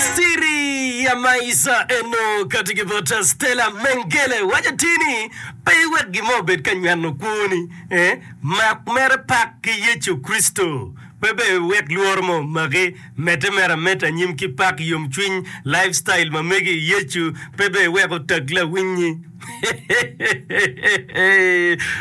Siri ya Maisa eno kati ki bot Stella Mengele waco atir ni pe iwek gin mo obed ka nyweno kwoni. Eh, mak mere pak ki Yecu Kricito. Pe bene iwek lworo mo omaki. Medde mere ameda anyim ki pak, yomcwiny, lifestyle ma mege i Yecu, pe bene iwek otag lawinnyi.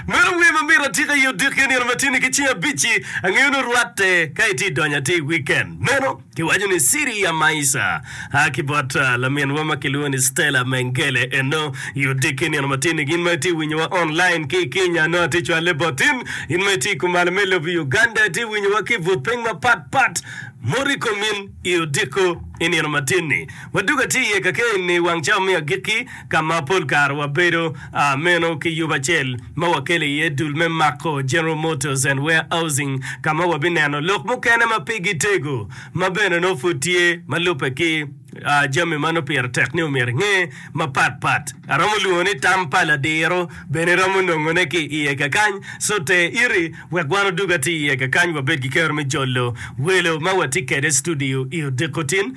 Meno wer ma myero atika i odiki nino matini ki cing abic-ci. Angeyo ni orwatte ka itye idonyo ata i wiken meno. Kiwaco ni Ciria Maisa a ki bot laminwa ma kilwongo ni Stella Mengele eno i odiki i nino matin-ni. Gin ma itye winyowa online ki i Kenya nongo atye cwalle botin. In ma itye i kumalo me lobo Uganda itye winyowa ki i but piny mapat pat. Mot i komin i odiko i nino matin-ni. Wadwogo atye iye kakee-ni i wang cawa me agikki. ka ma pol kare wabedo meno ki yub acel ma wakelo iye dul me mako General Motors and Warehousing ka ma wabineno lok mukene ma pigi tego ma bene nongo pud tye ma lubbe ki jami ma nongo pire tek ni omyero inge mapat pat. Aromo lwongo ni tam pa ladiro bene iromo nongone ki iye kakany, so ter iri wek wan odug atir iye kakany wabed ki kero me jolo welo ma watye kwede i studio i odiko tin.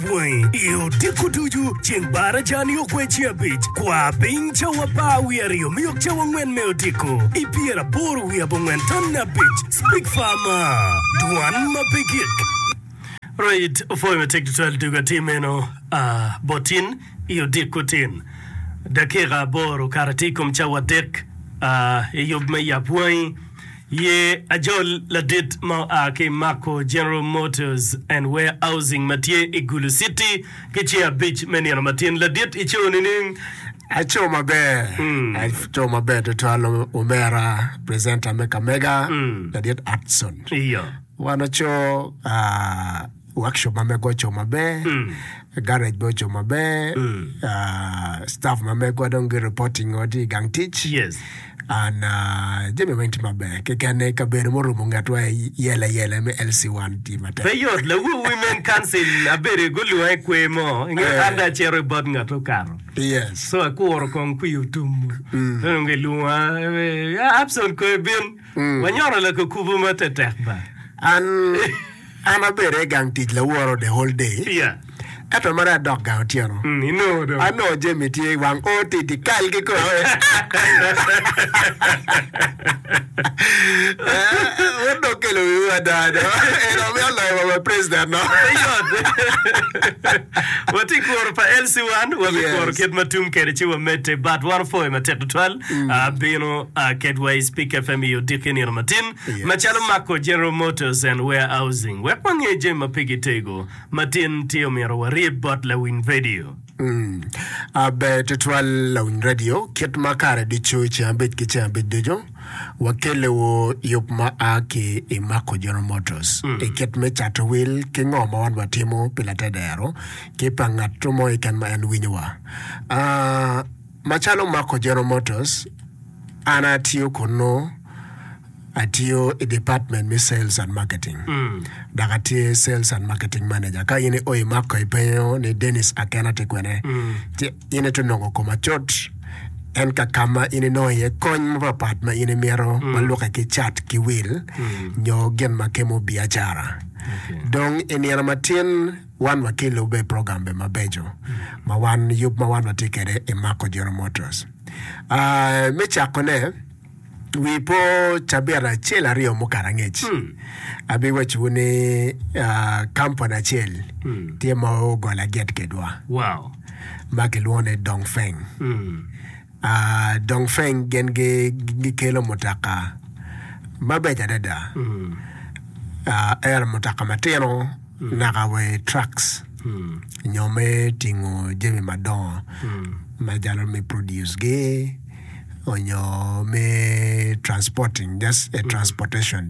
bwangi i odiko ducu. Ceng Barajani okwe ci abic, kwa piny cawa apar wiye aryo me yok cawa angwen me odiko. I pyeraboro wiye abongwen tonne abic, Speak Farmer, Dwan ma pe gik. Right, opwoyo matek tutwal tugo atir meno a bot tin i odiko tin. Dakika aboro okato atir i kom cawa adek a i yub me yap bwangi. Ye ajol ladit ma oa ki i Mako General Motors and Warehousing ma tye i Gulu Citi ki ce abic me nino matin. Ladit ico nining? Aco maber, aco maber tutwal omera presenter me kamega ladit Hudson. Iyo. Wan aco ah, Workshop ma megwa ocung maber, garage bene ocung maber, ah, staff ma megwa dong gi reporting o tye i gang tic. Yes. And ah, jami weng tye maber. Kekene kabedo murumo ngetwa i yela yela me LC1 tye matek. Pe yot, lawu Women Council abedo gulwonga i kwer mo, ingeyo Eh. an dong acito i bot ngat okato. Yes. So akuro kong kwi otum. Pe onongo gilwonga, eh, Abson koyo bin. Wanyoro lakukubu ma tetek ba. An, an abedo i gang tic laworo the whole day. Yeah. Ento mere adok gang otyeno. Mm, inongo dong. Anongo Jemi tye i wang o titi kal ki kore. Eh, wun dong kelo wiwu ada do. En omi oloyo wa wa president no. Eyot. Watye kuro pa LC1, wabi Yeah. kuro kit ma tum kede ci wamedde, but wan opwoyo matek tutwal. bino ketwa i Spik FM i odiki nino matin, macalo mako General Motors and Warehousing, wek wange jami ma pe gitego matin tye omyero waryeb bot lawiny radio. Ber tutwal lawiny radio, kit ma kare ducu ceng abic ki ceng abic ducu wakelewu yub ma a ki i mako General Motors i kit me cato wil ki ngo ma wan watimo pi latedero ki pa ngat mo keken ma en winyowa. Macalo Marco General Motors, an atiyo kunnu, atiyo i department me Sales and Marketing, dok atye Sales and Marketing Manager. Ka in ioyo i Marco ipenyo ni Dennis Akena tye kwene, ci in itye nongo koma cut. En ka ka ma in inongo iye kony mapatpat ma in imito ma lukke ki cat ki wil nyo gin ma kemo biacara. Dong i nino matin, Wan watye lubbe progambe mabeco ma wan yub ma wan watye kede i Marco General Motors. Me cako ne, wi po cabit acel aryo mukato angec, abi waco wu ni kampani acel tye ma ogolo aget kedwa ma kilwongo ni Dongfeng. Dongfeng gin gikelo mutoka mabeco adada ento mutoka matino naka wa i trucks nyo me tingo jami madongo macalo me produce gi onyo me transporting just a transportation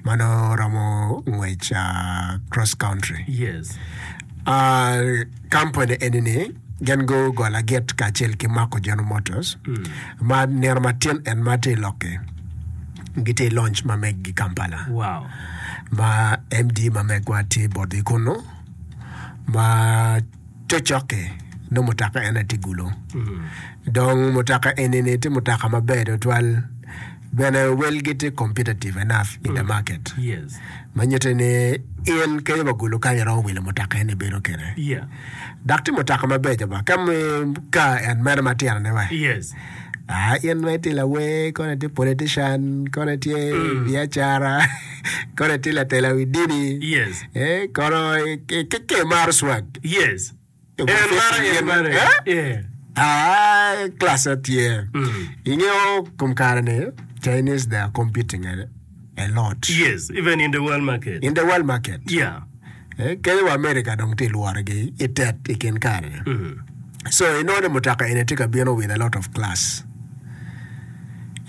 mano romo ngwec cross country. Kampani eni-ni gin gugola git kacel ki mako General Motors ma nino matin en ma tye i lok-ki. Gitye i lonj ma meggi Kampala Wow. ma MD ma megwa tye bot i kunu ma cocok-ki nongo mutoka en aye tye gulu. Dong mutoka eni-ni tye mutoka maber tutwal Bene, welgi tye competitive enough in the market ma nyutte ni in kenyo ba gulu kany iromo wilo mutoka en ibedo kene dok tye mutoka mabeco ba ka ka en meno ma tino ne wa ah in ma itye lawer kono itye politician kono itye biacara kono itye latela wi dini eh kono ki kimaro swag. En mara, en mara. Yeah. Ah, klassa tye. Ingeyo kom kare ni Chinese they are competing a, a lot. Yes, even in the world market. In the world market. Yeah. Eh, kene wa America dong tye lworogi i tet i kin kare. So inongo ni mutoka eni tye ka bino with a lot of class.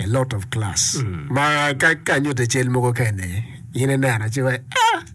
A lot of class. Ma ka ka anyutte cal mogo kene, in ineno ci wa, ah,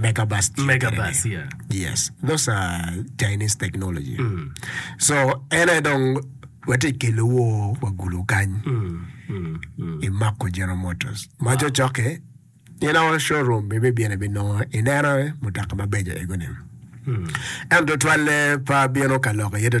Mega bus tye Mega kwede-ni. bus, yeah. Yes, those are Chinese technology. So en aye dong watye ka kelo wo wa gulu kany i Mako General Motors. Ma cocokke in a all showroom ibibino ibinongo ineno mutoka mabeco egoni. Ento tutwalle pe abino ka lok iye tutwal.